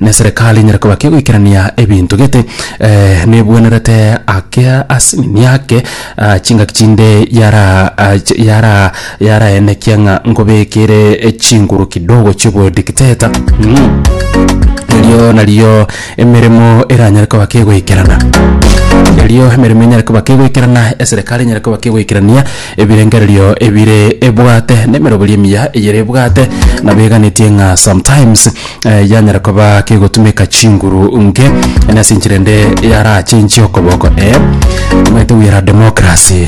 Neserekari enyare koba ki egoikerania ebinto gete nebwenerete ake ase enini ake chingaki chinde yara yara yaraenekia ng'a nkobekere chinguru kidogo chi'obodikteta erio nario emeremo eranyare koba ki egoikerana erio emeremo enyare koba ki egoikerana eserekari enyare koba ki egoikerania ebirengererio ebire ebwate nemeroberio emiya eyere ebwate nabo eganetie ng'a sometimes. eh, yanyara koba kegotumeka chinguru nke eh, nase enchera ende yarachenchie okoboko eh, omanyete we are democracy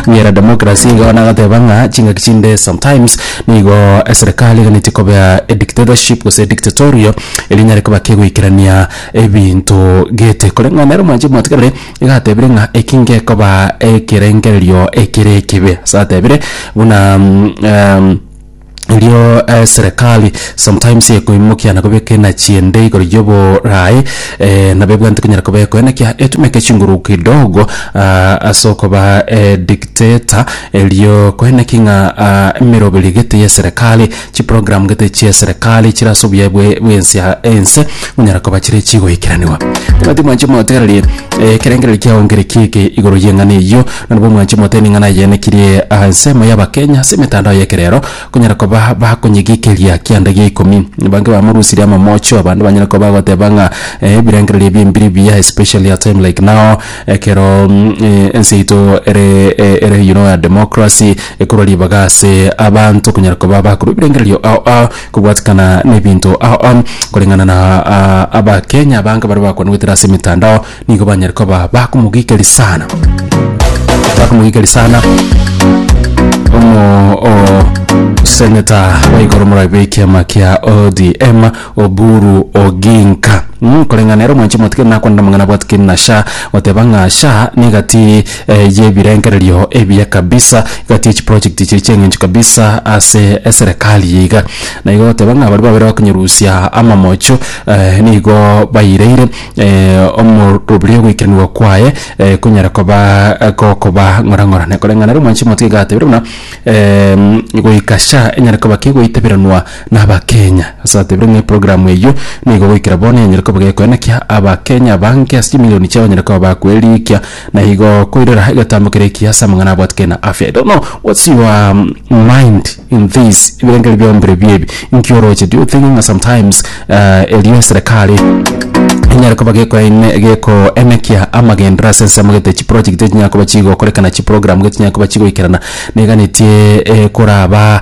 we are democracy igo nagateba ng'a chingaki chinde sometimes nigo eh, serikali eganeti koba eh, dictatorship gose dictatorio eri nyare koba kegoikerania ebinto gete koreng'ana nere omwanche mwatigarire igatebire ng'a eki ngekoba ekerengererio ekere ekibe satebire buna mm, em, erio eh, serikali sometimes ekoimokia na kobeka enachi ende igoro y'oborae eh, nabo ebwanete konyara koba ekoenekia etumeke chinguru kidogo ah, ase okoba eh, dictator erio koeneki ng'a ah, emeroberi gete ya serikali chiprogram gete chia serikali chire ase obuya bwe- bwensia ense konyara koba chire chigoikeraniwa timati mwanche motererie eh, ekerengererio kiaongerekia eke igoro y'eng'ana eyio Nabo mwanche mote ening'ana eyaenekirie aa ensemo y'Abakenya ase emetandao y'ekerero konyara koba bakonyegiikeria kianda gia ikomi. Bange bamorusirie amamocho abande banyare koba bagoteba ng'a ebirengererio ebi mbiri mbuya especially a time like now ekero ense yaito ere ere you know ya democracy ekorwa ribaga ase abanto konyara koba bakorwa ebirengererio ao ao kobwatikana na ebinto ao ao koreng'ana na Abakenya abange baria bakwanegwetera ase emetandao. nigo banyare koba bakomogikeria sana bakomogikeria sana omo o seneta wa igoro morabe ekiama kia odm oburu oginka Mm, koreng'a nero mwanche mwatike nakwanera mang'ana bwatike na sha goteba ng'a sha negati eh, yebirengererio ebiya kabisa gati echiproject chiri cheng'encho kabisa ase eserikali yeiga na igo goteba ng'a bari babere bakonyerusia amamocho eh, nigo baireire omorobio ogoikeraniwa kwaye konyara koba gokoba ng'orang'orane koreng'ana ere omwanchi omotiga iga atebire buna goika sha enyare koba kegoiteberanwa na abakenya ase atebire ng'a eprogramu eywo nigo goikera bono enyare koba gekoenekia abakenya abange ase chimilioni chiabo banyare koba bakoerigia. Na igo koirora egetambo keria ekiya ase amang'ana abwate kere na afya. I don't know what's your mind in this ebirengererio bionsi birobio ebi inki oroche? Do you think ng'a sometimes eh, erio eserekari enyare koba gekoene gekoenekia amagendero ase ensemo gete chiprojegiti echinyare koba chigokorekana chiprogramu gete chinyare koba chigoikerana neganetie ekoraba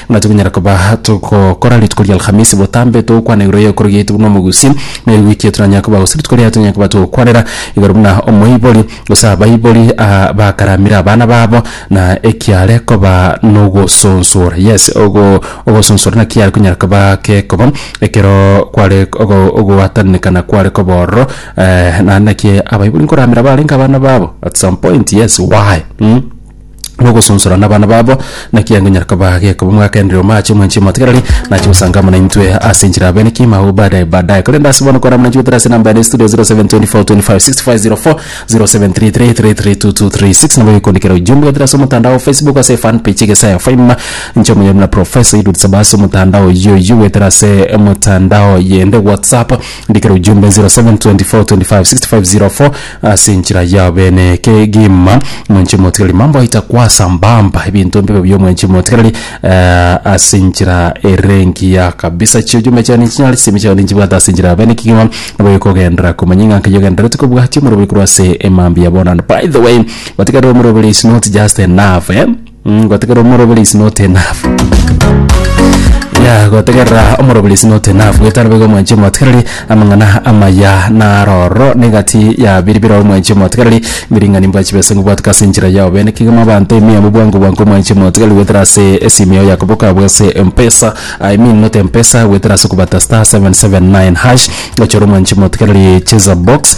Ng'a tokonyara koba togokora rituko ri'Alhamisi botambe togokwana igoro y'ekoro giaito buna omogusi, na erigwe ki etoranyare koba gose rituko riaye tonyare koba togokwanera igoro buna omoibori, gose abaibori bakaramire abana babo, na ekiare koba nogosonsora. Yes, ogo ogosonsora naki kiare konyara koba gekoba ekero kware ogo ogwatananekana kware koba ororo naende naki abaibori nkoramera barenge abana babo at some point, yes, why? Mh. nogosonsora nabana babo, naki agonyara kobaa gekoba omogaka enre omo ache omwanchi omotigareri, nache gosanga amo naintwe ase enchera abenekie maogo baadaye baadaye. Korende ase bono kware amana chigoterera ase enamba ere studio 0724256504, 0733332236, nabo oikondekera ujumbe goetera ase omotandao Facebook ase fan page egesayo faima, inche omonyene buna Professor Eliud Saba ase omotandao oyio oyio goetera ase omotandao yende WhatsApp, ndikera ujumbe 0724256504. Ase enchera yao bene kegima, mwenchi omotigareri mambaita kwasa mbamba ebinto mbibe bia omwenchi omotigareri, eh, ase enchera erengiya kabisa. Chiochuma chiane nchinyare, chisemi chiao ninchibwate ase enchera ya bene kegima, nabo oyokogenderera komanya ng'a nkaiyo ogenderereti kobwatia omorobori korwa ase emambia bono. And by the way, otigarire omorobori is not just enough, eh. Mmh gotegerera omoroberi is not enough yeah gotegerera omoroberi is not enough getari boigo omwanchi omotigereri amang'ana amaya naroro negati ya biri biroro omwanchi omotigereri ebiring'ani mbwa chibesa ngobwateka ase enchera yao bene kegima abanto ime yabo bwango bwango omwanchi omotigereri goetera ase esimi yao ya koboko abwo ase mpesa I mean not mpesa goetera ase okobata star seven seven nine hash gochora omwanchi omotigereri cheza box.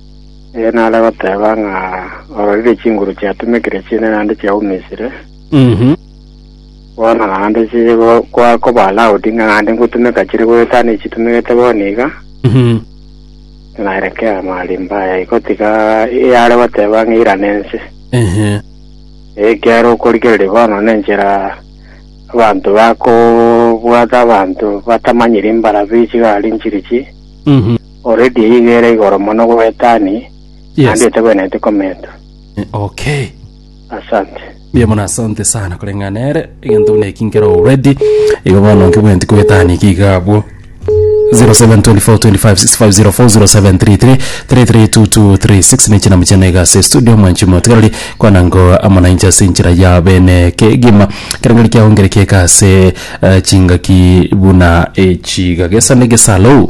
Ere nare goteba ng'a ororire chinguru chiatumekire chi'ene naende chiaumisire, Mhm. bono naende chire go- kwa- koba allowed ng'a naende ngotumeka chire goetana echitumegete bono iga, Mhm. nareke amarimba aya igotiga eyare goteba ng'a irana ense. Ehe. Ekiagera okorigereria bono nenchera abanto bakobwata abanto batamanyire mbarabi chigari nchirichi, Mhm. Already eyio iga ere igoro mono gwa etani Yes. naende etegwenereti komentwa. Eh, Okay. Asante. Mbuya mono asante sana koreng'a nere egento buna eki nkero already igo bono nkebwenti kwetani iki iga abwo 0724256504 ne chinamu chiane iga ase studio mwanchi motigarari kwana ngo amonanche ase enchera ya bene kegima kerengari kiaongereke iga ase eh, chingaki buna echiga gesane gesalou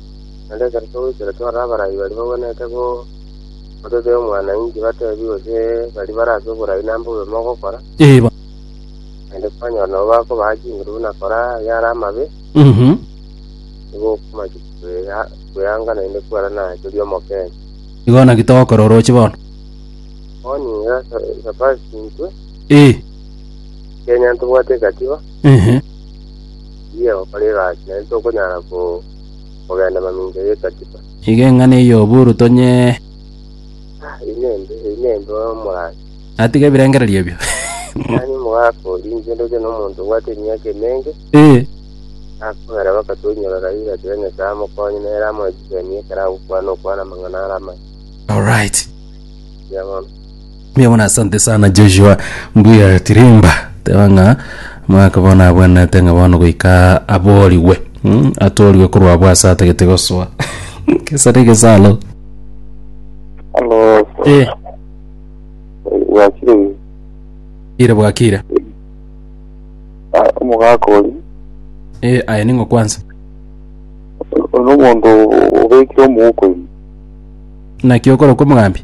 Naende ekero togoikera tware abarai baria bagwenerete gototebia omwana-inche, bateebie gose baria bare ase oborai nambe obe mogokora, naende kwanyora nabo bakobaha chinguru buna kora ayare amabe, nigo okomanya kweanga naende kwerana teri omokenye. Igo naki togokora orooche bono. Bono inwe Sabati intwe, ekiagera tobwate egatiba. Tiga gokora egasi, naende tokonyara kogenda mamincha y'Ekatiba. Iga eng'ana eyio buru tonyee. Eyi nembe, eyi nembe omorandia. Natiga ebirengererio ebio. Mani omogaka oria, inche ndoche nomonto obwate emiaka emenge, nakogera bakato inyora kairi gateba Nyasae amokonye, nere amoe chisemi ekero agokwana okwana amang'ana are amaya. Alright. Buya mono. Mbuya mono asante sana Joshua mbuya tirimba teba ng'a mwaka bono abwenerete ng'a bono goika aborigwe mm, atorigwe korwa abwo ase atagete gosoa kesare egesalo Halo, eh, wakire ire bwakire omogaka ori eh, aye ning'o kwanza ono omonto obekire omouko ime naki okora kwa omogambi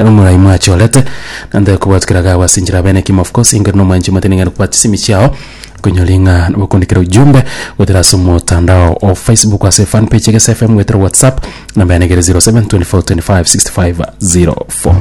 Omoraai mwachorete, na ntari kobwat kera gagwa ase enchera abene ekimo of course inga ere na omwanchi omotene ng'aini kobwat chisimi chiao konyora ing'aa nogokundi kera ujumbe goetera ase omotandao o Facebook ase fan page egese FM goetera WhatsApp namba yane egere 0724256504.